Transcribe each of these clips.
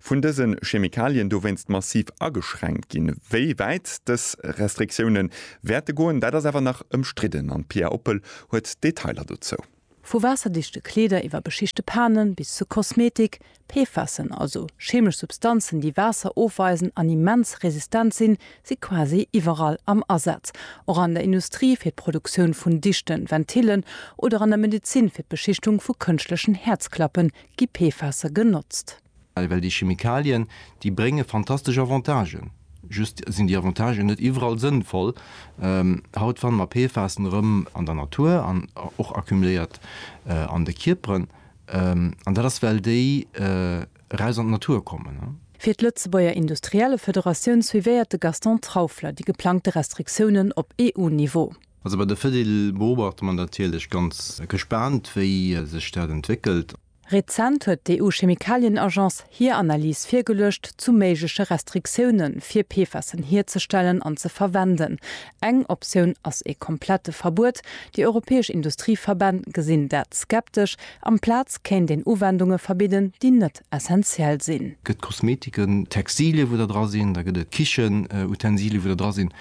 vun dëse Chemikalien dowéinst massiv ageschränkt ginn. Wéi wäit dës Restriktioune wäerte goen, dat ass awer nach ëmstridden an d'Pia Oppel huet d'Detailer dozou. Vu waasserdichte Kleeder iwwer beschichte Panen bis zu Kosmetik, PFASen, also cheemesch Substanzen, déi Waasser ofweisen an immens resistent sinn, si quasi iwwerall am Asaz. Och an der Industrie fir d'Produktioun vun dichten Ventillen oder an der Medezin fir d'Beschichtung vu kënschtlechen Häerzklappen gi PFASe genotzt. Well well déi Chemikalien, déi brénge fantastesch Avantagen, just sinn déi Avantagen net iwwerall sënnvoll. Haut fanne mer PFASen erëm an der Natur an och accumuléiert an de Kierperen. An dat ass well déi eraus an d'Natur kommen. Fir d'Lëtzebuerger Industriellefederatioun suivéiert de Gaston Trauffler déi geplangte Restriktiounen op EU-Niveau. Also bei der Fedil beobachte mer natierlech ganz gespaant, wéi sech dat entwéckelt. Rezent huet d'EU-Chemikalien-Agence hir Analys virgeluecht zu méigleche Restriktioune fir PFASen hierzestellen an ze verwenden. Eng Optioun ass ee komplette Verbuet. Déi europäesch Industrieverbänn gesinn dat skeptesch. Amplaz kéint een Uwendunge verbidden, déi net essentiell sinn. Gëtt Kosmetiken, Textilien, wou der dra sinn, da gëtt et Kichenutensilien, wou der dra sinn,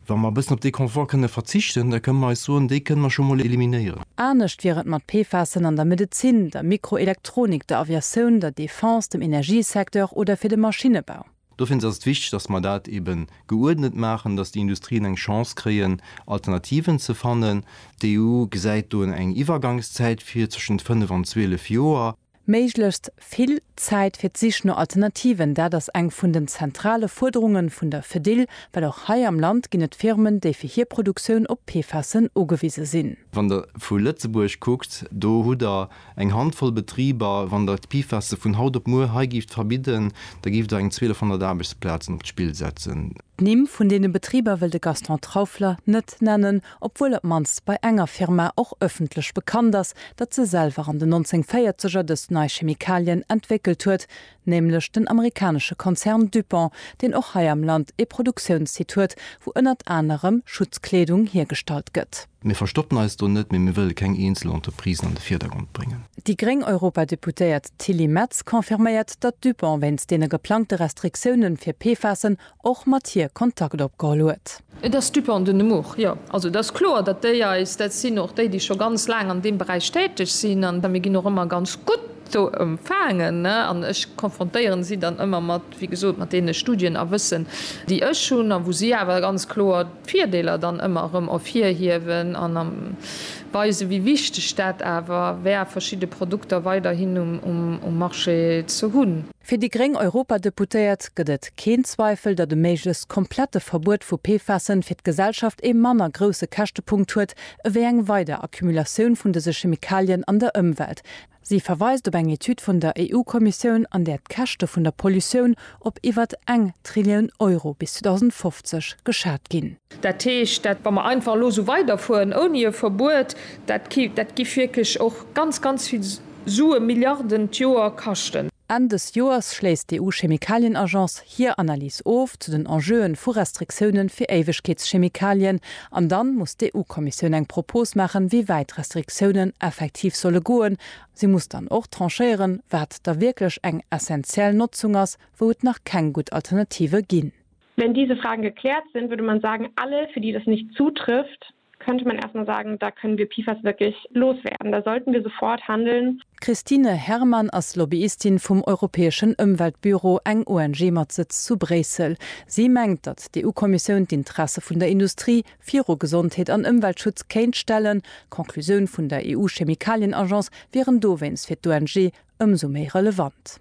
Wa mer e bëssen op dee Confort kënne verzichten, da kënne mer eis soen, dee kënne mer scho mol eliminéieren. Anescht wier et mat PFASen an der Medezin, der Mikroelektronik, der Aviatioun, der Defense, dem Energiesecteur oder fir de Maschinnebau. Dofir ass et wichteg, dass mer dat eebe geuerdnet maachen, dass déi Industrien eng Chance kréien, Alternativen ze fannen. D'EU gesäit do eng Iwwergangszäit vir, zwëschent fënnef an zwielef Joer. Méiglechst vill Zäit fir d'Sich no Alternativen, dat ass eng vun den zentrale Fuerderunge vun der Fedil, well och hei am Land ginn et Firmen, déi fir hir Produktioun op PFASen ugewise sinn. Wann Der vu Lëtzebuerg kuckt, do hutt Der eng Handvoll Betriber. Wann Der d'PFASe vun haut op muer hei gift verbidden, da giff Der eng 1200 Aarbechtsplazen op d'Spill setzen. D'Nimm vun deene Betriber wëll de Gaston Trauffler net nennen, obwuel op d'mannst bei enger Firma och ëffentlech bekannt ass, datt se selwer an den 1940er dës nei Chemikalien entwéckelt huet, nämlech den amerikanesche Konzern DuPont, deen och hei am Land ee Produktiounssite huet, wou ënnert anerem Schutzkleedung hiergestallt gëtt. Mir verstoppen eis do net, mee mir wëlle keng eenzel Entreprisen an de Virdergrond bréngen. Déi gréng Europadeputéiert Tilly Metz confirméiert, datt DuPont wéinst deene geplangte Restriktiounen fir PFASen och mat hir Kontakt opgeholl huet. Et ass d'Dupan de Nemours, jo. Also et ass kloer, datt déi eis, dat sinn och déi, déi scho ganz laang an deem Beräich täteg sinn, an mir ginn och ëmmer ganz gutt do empfaangen, an ech konfrontéieren si dann ëmmer mat, wéi gesot, mat deene Studien a Wëssen, déi ech hunn, a wou si awer ganz kloer d'Virdeeler dann ëmmer erëm ervirhiewen an weisen, wéi wichteg dat awer wär, verschidde Produkter weiderhin um Marché ze hunn. Fir déi gréng Europadeputéiert gëtt et keen Zweifel, datt e méiglechst komplette Verbuet vu PFASen fir d'Gesellschaft ee manner grousse Käschtepunkt huet ewéi eng weider Accumulatioun vun dëse Chemikalien an der Ëmwelt. Si verweist op eng Etüd vun der EU-Kommissioun, an där d'Käschte vun der Pollutioun op iwwer eng Trillion Euro bis 2050 geschat ginn. Dat heescht, dat wa mer einfach elo esou weiderfueren ouni e Verbuet, dat gi wierklech och ganz, ganz vill Sue Milliarden d'Joer kaschten. Enn dës Joers schléisst d'EU-Chemikalien-Agence hir Analys of zu den Enjeuen vu Restriktioune fir Éiwegkeetschemikalien an dann muss d'EU-Kommissioun eng Propos maachen, wéi wäit d'Restriktiounen effektiv solle goen. Si muss dann och tranchéieren, wat da wierklech eng essentiell Notzung ass, wou et nach keng gutt Alternative ginn. Wenn diese Fragen geklärt sind, würde man sagen, alle, für die das nicht zutrifft, könnte man erst mal sagen, da können wir PFAS wirklich loswerden, da sollten wir sofort handeln. D'Christine Herrmann ass Lobbyistin vum europäeschen Ëmweltbüro, eng ONG mat Sëtz zu Bréissel. Si mengt, datt d'EU-Kommissioun d'Interesse vun der Industrie viru Gesondheet an Ëmweltschutz kéint stellen. D'Conclusioun vun der EU-Chemikalien-Agence wieren dowéinst fir d'ONG ëmsou méi relevant.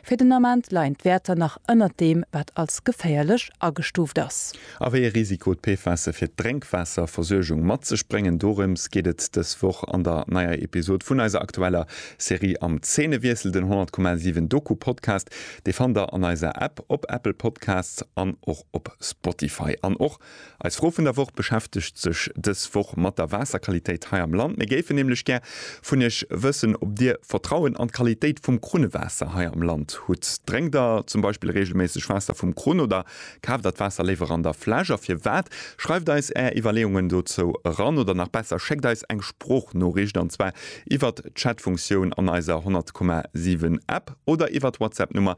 Fir den Ament leien d'Wäerter nach ënnert deem, wat als geféierlech agestuuft ass. A wéi ee Risiko d'PFASe fir d'Drénkwaasserversuergung mat sech bréngen, dorëms geet et dës Woch an der neier Episod vun eiser aktueller Serie Am Zeenewiessel, den 100,7 Doku-Podcast. Dee fannt der an eiser App, op Apple Podcasts an och op Spotify. An och Eis Fro vun der Woch beschäftegt sech dës Woch mat der Waasserqualitéit hei am Land. Mir géifen nämlech gär vun Iech wëssen, ob Dir Vertrauen an d'Qualitéit vum Krunnewaasser hei am Land hutt. Drénkt Der zum Beispill reegelméisseg Waasser vum Krunn oder kaaft Der d'Waasser léiwer an der Fläsch? A firwat? Schreift eis Är Iwwerleeungen dozou eran oder nach besser, schéckt eis eng Sproochnoriicht, an zwar iwwert d'Chatfunktioun an eiser 100,7 App oder iwwert WhatsApp-Nummer